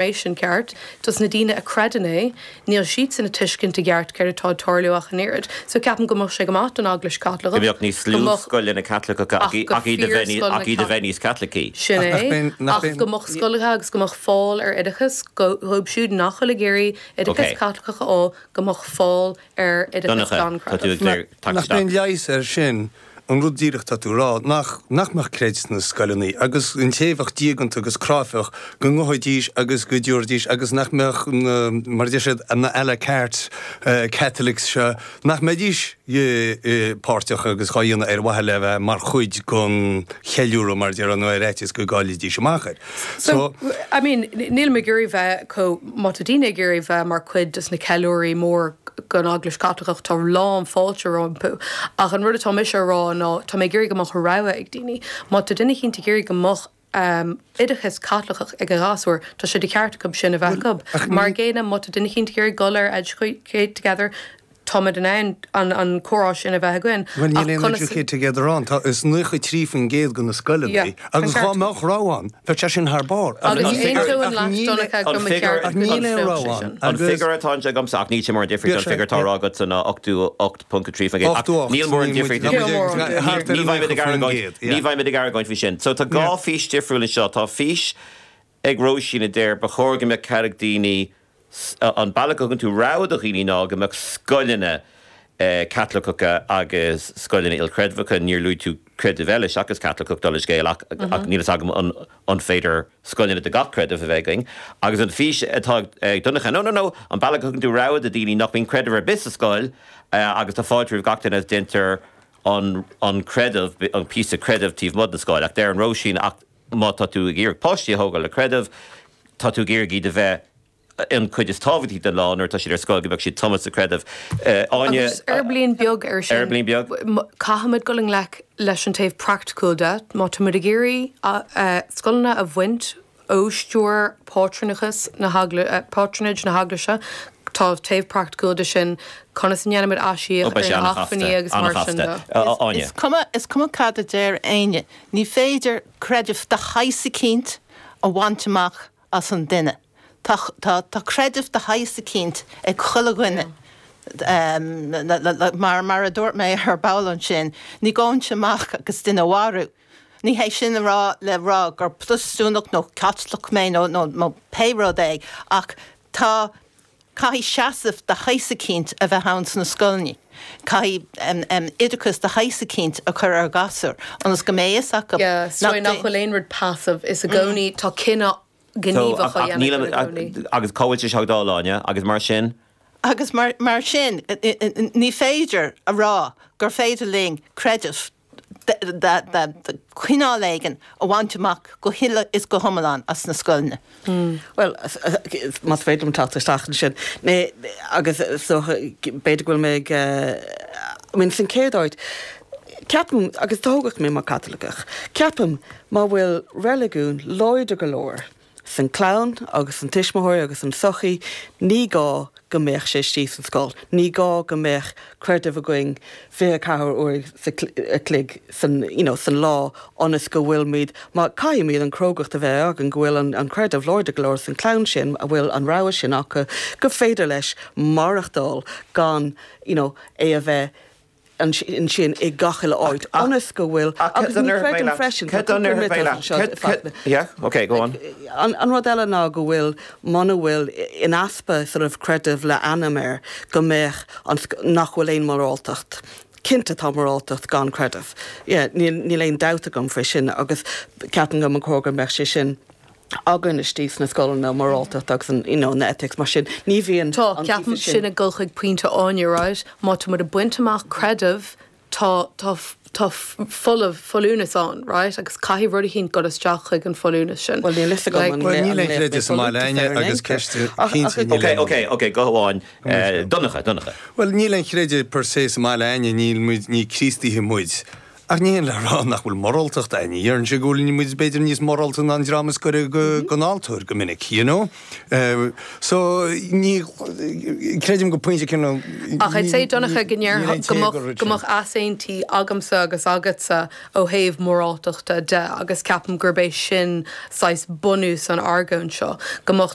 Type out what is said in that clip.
raibh sin ceart. Do na daoine a chreideann é, níl siadsan ag tuiscint i gceart céard atá ag tarlú ach an oiread. So ceapaim go mbeadh sé go maith don Eaglais Chaitliceach, go mbeadh níos lú scoileanna Caitliceacha ach go fíor scoileanna Caitliceacha, ach iad a bheith níos Caitlicí. Sin é, ach go mbeadh scoileanna agus go mbeadh fáil ar oideachas, go, dhóibh siúd nach bhfuil ag iarraidh oideachas Caitliceach a fháil, go mbeadh fáil ar oideachas gan chreideamh. Nach mbeadh leigheas ar sin? An rud díreach atá tú ag rá nach, nach mbeadh creideamh sna scoileanna agus an té a bheadh diaganta agus cráifeach go ngabhfaidís agus go dtiúrfaidís agus nach mbeadh na, mar a deir siad, na a la carte Catholics seo, nach mbeidís páirteach agus dhá dhéanamh ar mhaithe le bheith mar chuid den cheiliúradh mar a déarfá nó ar fhaitíos go gcáillfidís amach air. So, I mean, nílim ag iarraidh bheith chomh má tá daoine ag iarraidh bheith mar chuid de na ceiliúraí mór den Eaglais Chaitliceach, tá lán fáilte rompu. Ach an rud atá mise a rá ná tá mé ag iarraidh go mbeadh rogha ag daoine. Má tá duine eicínt ag iarraidh go mbeadh oideachas Caitliceach ag a ghasúir, tá sé de cheart acu sin a bheith acu. Mar an gcéanna, má tá duine eicínt ag iarraidh dul ag Educate Together, Táimid in ann an comhrá sin a bheith againn. Bhuel, níl aon educate together ann. Tá, is 93% de na scoileanna. Agus dhá mbeadh rogha ann, bheadh sé sin thar barr. Ach níl aon rogha ann. Ach níl aon rogha ann. An figiúr atá agamsa, ach níl sé mór an difríocht ón figiúr atá ráite agatsa ná 88.3%. 88. Níl mór an difríocht. Níl mór an difríocht. Ní bheidh muid ag argóint. Ní bheidh muid ag argóint faoi sin. So tá dhá fís difriúil anseo. Tá fís ag Róisín a deir, Ba chóir go mbeadh cead ag daoine An bealach a thugann tú rogha do dhaoine ná go mbeadh scoileanna Caitliceacha agus scoileanna ilchreidmheacha Níor luaigh tú creideamh eile seachas Caitliceach dála an scéil ach ach níl fhios agam an an féidir scoileanna do gach creideamh a bheith againn agus an fís atá ag Donncha no no no An bealach a thugann tú rogha do daoine nach mbíonn creideamh ar bith sa scoil agus tá fáilte roimh gach duine agus deintear an an creideamh an píosa creideamh taobh amuigh den scoil ach deireann Róisín ach Má tá tú ag iarraidh páistí a thógáil le creideamh, tá tú ag iarraidh iad a bheith an chuid is tábhachtaí den lá, nuair atá siad ar scoil, go mbeadh siad tumtha sa chreideamh. Áine. Aguisín beag air sin. Aguisín beag. Caithfimid dul i ngleic leis an taobh praiticiúil de. Má táimid ag iarraidh scoileanna a bhaint ó stiúir pátrúnachas na patronage na hEaglaise, tá taobh praiticiúil de sin, conas a ndéanaimid aisíoc ar na hacmhainní agus mar sin de. Is cuma cad a deir éinne, Ní féidir creideamh de shaghas eicínt a bhaint amach as an duine. Tá, tá, tá creideamh de shaghas eicínt ag chuile dhuine. Mar, mar a dúirt mé ar ball ansin, ní ghabhfainn amach agus duine a mharú. Ní hé sin a rá, le rá gur Protastúnach nó Caitliceach mé nó, nó, nó pé rud é ach tá, Caithfidh seasamh de shaghas eicínt a bheith ann sna scoileanna. Caithfidh oideachas de shaghas eicínt a chur ar ghasúir ionas go mbeidh a fhios acu nach nach bhfuil aon rud passive is i gcónaí tá cinneadh gníomhach á dhéanamh i gcónaí. Agus cá bhfuil sé sin le fáil, Áine? Agus mar sin? Agus mar sin, ní féidir a rá gur féidir linn creideamh cineál éigin a bhaint amach go huile is go hiomlán as na scoileanna. Bhuel, más féidir liom teacht isteach ansin, agus b'fhéidir go bhfuil mé ag míniú sa chéad áit, ceapaim, agus tógadh mé mar Caitliceach, ceapaim má bhfuil reiligiún láidir go leor, San clann agus san tuismitheoirí agus san sochaí ní gá go mbeadh sé istigh san scoil. Ní gá go mbeadh creideamh againn fiche ceathair uair a chloig san you know san lá ionas go bhfuilimid má caithfimid an chrógacht a bheith againn go bhfuil an creideamh láidir go leor san clann sin a bhfuil an rogha sin acu gur féidir leis maireachtáil gan you know é a bheith ansin i ngach uile áit ionas go bhfuil. Agus ní chreidim freisin. Cad an uimhir a bheidh leat anseo i bhfad na. Yeah, ok, go on. An rud eile ná go bhfuil, muna bhfuil in easpa sort of creideamh le ainm air, go mbeadh an, nach bhfuil aon moráltacht. Cinnte tá moráltacht gan creideamh. Yeah, níl aon dabht agam faoi sin agus ceapaim go mba chóir go mbeadh sé sin. againn istigh sna scoileanna, moráltacht agus an, you know, na ethics mar sin. Ní bhíonn an difear Tá, ceapaim, sin ag dul chuig pointe Áine, right? Má tá muid ag baint amach creideamh, tá, tá, tá folamh, folúnas ann, right? Agus caithfidh rud eicínt dul isteach chuig an folúnas sin. Bhuel, níl a fhios agam Like, an Well, lé- níl an aon chreideamh sa mbaile againne folúntas ann agus aontas. ceist Ach- ach- chinntí níl Ok, aon. ok, ok, guth amháin. Eh, Donncha, Donncha. Bhuel, níl aon chreideamh per se sa mbaile againne, níl muid, ní Críostaithe muid. Ach ní hin le rá nach bhfuil moráltacht ann. Déarfainnse go bhfuil muid b'fhéidir níos morálta ná an dream is goire den altóir go minic, you know? So ní creidim go pointe céanna. Ach I'd say Donncha go ndéar go mbeadh easaontaí agamsa agus agatsa ó thaobh moráltachta de agus ceapaim gurb é sin saghas bunús na hargóna seo, go mbeadh